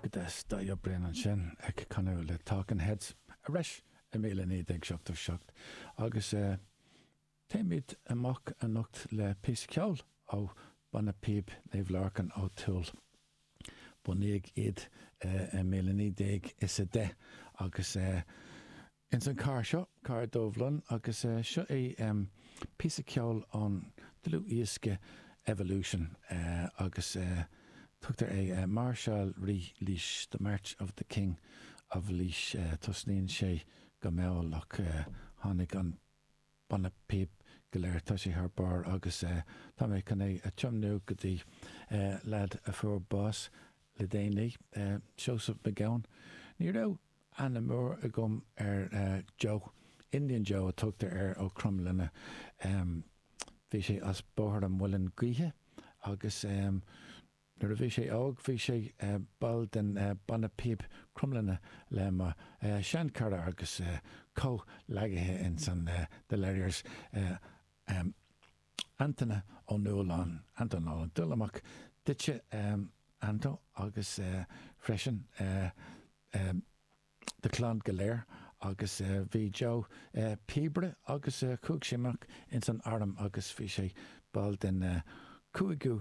go dtí sin David Byrne ansin ag canadh le Talking Heads ar ais i míle naoi déag seachtó seacht agus téimid amach anocht le píosa ceoil ó Bhanna Píob Naomh Lorcán Ó Tuathail. Bunaíodh iad i míle naoi déag is a deich agus. Ins an cathair seo, cathair Dubhlinn, agus seo é píosa ceoil ón dlúthdhiosca Evolution agus tugtar air Máirseáil Rí Laoise, The March of the King of Laois. Tosnaíonn sé go mall ach tháinig an banna píob go léir, tá sé thar barr agus tá mé chun é a thiomnú go dtí leaid a fuair bás le déanaí, Seosamh Mac Gabhann. Ní raibh aithne mhór agam ar Joe. Indian Joe a tugtar air ó Cromghlinne. Bhí sé as Bóthar an Mhuilinn Gaoithe agus nuair a bhí sé óg bhí sé ball den Bhanna Píob Cromghlinne le mo shean cara agus comhghleacaithe ins an The Ledgers, Antaine Ó Nualláin, Anton Nolan, Dul amach duitse Anto agus freisin don chlann go léir agus bhí Joe píobaire agus chuaigh sé amach ins an arm agus bhí sé ball den 5ú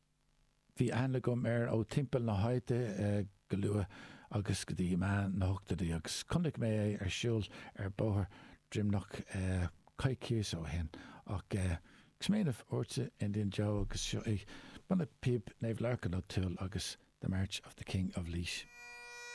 Bhí aithne agam air ó timpeall na háite go luath agus go dtí meán na hochtóidí agus chonaic mé é ar siúl ar bóthar Droimneanach coicís ó shin ach ag smaoineamh ortsa, Indian Joe agus seo é, Banna Píob Naomh Lorcán Ó Tuathail agus The March of the King of Laois.